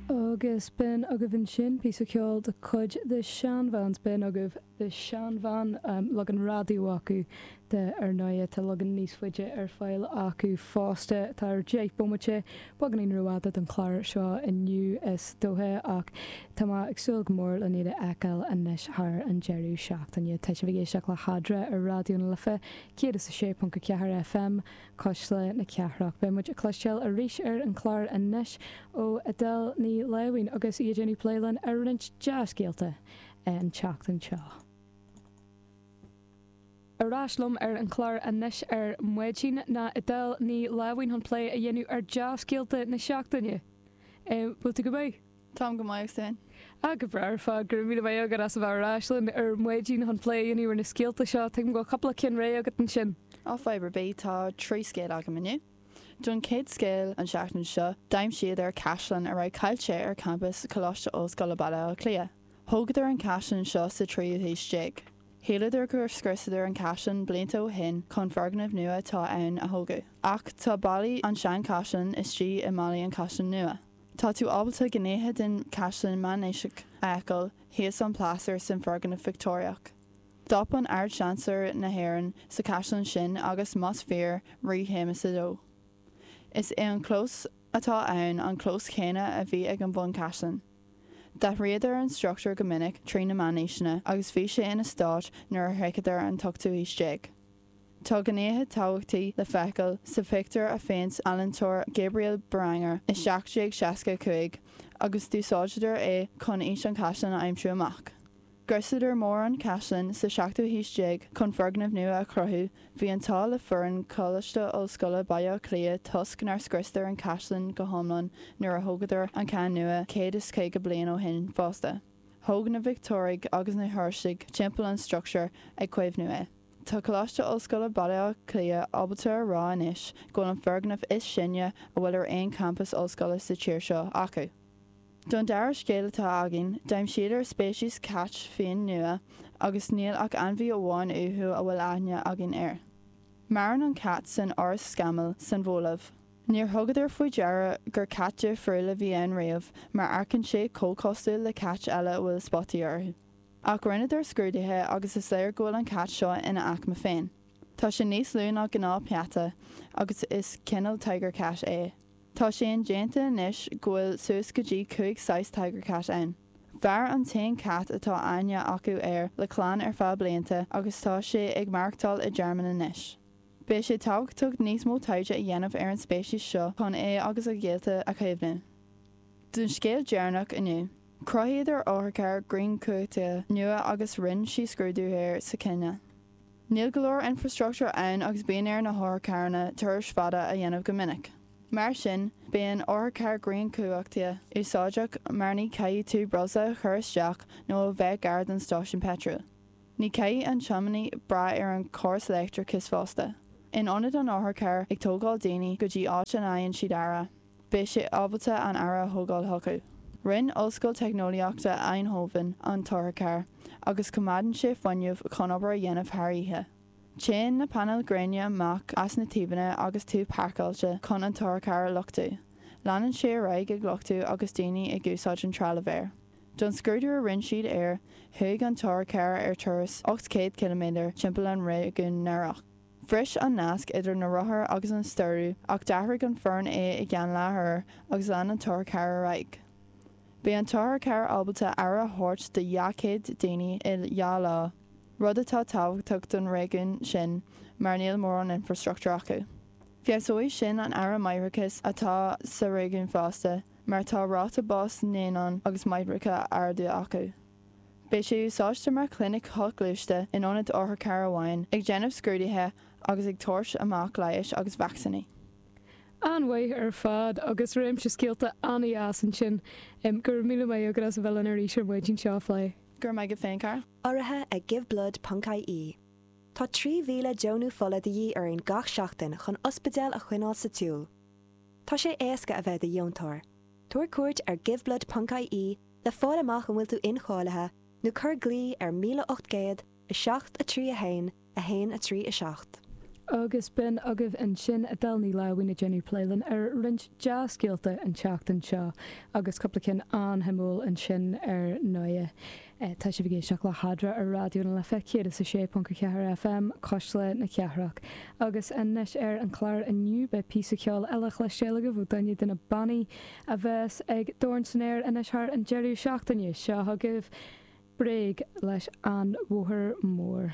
Agus b'in agaibh ansin píosa ceoil de chuid The Shanvans. B'in agaibh The Shanvan, leagan raidió acu de ar ndóigh. Tá leagan níos faide ar fáil acu fosta. Tá deich bomaite beagáinín rófhada don chlár seo inniu is dócha ach tá mé ag súil go mór len iad a fheiceáil anois thar an deireadh seachtaine. Tá sibh ag éisteacht le hArdán ar Raidió na Life 106.4 FM. Cuisle na Cathrach. Beidh muid ag cloisteáil arís ar an chlár anois ó Edel Ní Láimhín agus í ag déanamh plé linn ar roinnt dhea-scéalta an tseachtain seo. Ar ais liom ar an chlár anois ar maidin ná Edel Ní Láimhín chun plé a dhéanamh ar dea-scéalta na seachtaine. Bhfuil tú go maith? Táim go maith, agus tú fhéin? Ah, go breá ar fad, go raibh míle maith agat as a bheith ar ais linn ar maidin chun plé a dhéanamh ar na scéalta seo. Tuigim go bhfuil cupla ceann réidh agat ansin. Á, fadhb ar bith, tá trí scéal agam inniu. Don chéad scéal an seachtain seo, d'aimsíodar caisleán a raibh caillte ar champas Choláiste Ollscoile Baile Átha Cliath. Thógadar an caisleán seo sa tríú haois déag. Shíleadar gur scriosadar an caisleán blianta ó shin chun foirgneamh nua atá ann a thógáil, ach tá ballaí an sean chaisleán istigh i mballaí an chaisleán nua. Tá tú ábalta gnéithe den chaisleán meánaoiseach a fheiceáil thíos an plástar san foirgneamh Victeoiriach. D'fhan an tArd-Seansailéir na hÉireann sa chaisleán sin agus, más fíor, Rí Shéamas a Dó. Is é an clós atá ann an clós céanna a bhí ag an bhunchaisleán. D'athraíodar an struchtúr go minic trí na meánaoiseanna agus bhí sé ina stáit nuair a shroicheadar an t-ochtú haois déag. Tá gnéithe tábhachtaí le feiceáil sa phictiúr a phéint ealaíntóir Gabriel Beranger i 1765 agus d'úsáideadar é chun aois an chaisleáin a aimsiú amach. Scriosadar mórán caisleán sa seachtú haois déag chun foirgneamh nua a chruthú, bhí an t-ádh le foireann Choláiste Ollscoile Bhaile Átha Cliath toisc nár scriosadar an caisleán go hiomlán nuair a thógadar an ceann nua 150 bliain ó shin fosta, thóg na Victeoirigh agus na Seoirsigh timpeall an structúir ag caomhnú é. Tá Coláiste Ollscoile Baile Átha Cliath ábalta a rá anois go bhfuil an foirgneamh is sine a bhfuil ar aon champas ollscoile sa tír seo acu. Don dara scéal atá againn, d'aimsíodar speiceas cait fiáin nua agus níl ach ainmhí amháin uathu a bhfuil aithne againn air. Maireann an cat san fhoraois scamaill san Bholaiv. Níor thugadar faoi deara gur cat difriúil a bhí ann riamh mar amharcann sé chomh cosúil le cait eile a bhfuil spotaí orthu. Ach rinneadar scrúduithe agus is léir go bhfuil an cat seo ina aicme féin. Tá sé níos lú ná gnáthpeata agus is cineál tiger cat é. Tá sé indéanta anois go bhfuil suas go dtí cúig saghas tiger cat ann. Mhair an t-aon cat atá aithne acu air le clann ar feadh blianta agus tá sé ag maireachtáil i dtearmann anois. Beidh sé tábhachtach níos mó taighde a dhéanamh ar an speiceas seo chun é agus a ghaolta a chaomhnú. Don scéal deireanach inniu. Chruthaíodar otharcharr grianchumhachtaithe nua agus rinne siad scrúdú air sa Chéinia. Níl go leor infreastruchtúr ann agus bíonn ar na hotharcharranna turais fada a dhéanamh go minic. Mar sin, bíonn otharcharr grianchumhachtaithe úsáideach mar ní caithfidh tú breosla a chur isteach nó a bheith gar don stáisiún peitril. Ní caithfidh an tiománaí brath ar an chóras leictreachais fosta, in ionad an otharchairr ag tógáil daoine go dtí áit ina bhfaigheann siad aire. beidh sé ábalta an aire a thógáil chucu. Rinne Ollscoil Teicneolaíochta Eindhoven an t-otharcharr agus coimeádann sé fuinneamh chun obair a dhéanamh thar oíche. Téann na painéil ghréine amach as na taobhanna agus tú páirceáilte chun an t-otharcharr a luchtú. Leanann sé ar aghaidh ag luchtú agus daoine ag úsáid an trealaimh air. Don scrúdú a rinne siad air, chuaigh an t-otharcharr ar turas 800 km timpeall an réigiúin Narok. Bhris an nasc idir na rothair agus an stiúradh ach d'athraigh an foireann é i gceann leathuair agus lean an t-otharcharr ar aghaidh. Bhí an t-otharcharr ábalta aire a thabhairt do dhá chéad duine i dhá lá, rud atá tábhachtach don réigiún sin mar níl mórán infreastruchtúir acu. Feabhsóidh sin an aire máithreachais atá sa réigiún fosta mar tá ráta bás naíonán agus máithreacha arda acu. Beidh sé úsáidte mar chlinic shoghluaiste in ionad otharcharr amháin, ag déanamh scrúduithe agus ag tabhairt amach leighis agus vacsaíní. An-mhaith ar fad agus réimse scéalta an-deas ansin. Go raibh míle maith agat as a bheith linn arís ar maidin seo a phlé. Go raibh maith agat féin, Cathal. Urraithe ag Giveblood ponc IE Tá 3,000 deonú fola de dhíth orainn gach seachtain chun ospidéil a choinneáil sa tsiúl. Tá sé éasca a bheith i do dheontóir. Tabhair cuairt ar Giveblood ponc IE le fáil amach an bhfuil tú incháilithe, nó cuir glao ar 1800 7 3 1 1 3 7. Agus b'in agaibh ansin Adele Ní Láimhín ag déanamh plé linn ar roinnt dea-scéalta an tseachtain seo, agus cúpla cinn an-shuimiúil ansin ar ndóigh. Tá sibh ag éisteacht le hEadra ar Raidió na Life 106.4 FM, Cuisle na Cathrach. Agus anois ar an chlár inniu beidh píosa ceoil eile le cloisteáil agaibh ó duine de na bannaí, a bheas ag Dorn San Aer anois thar an deireadh seachtaine seo chugaibh Bréag leis An Bhóthar Mór.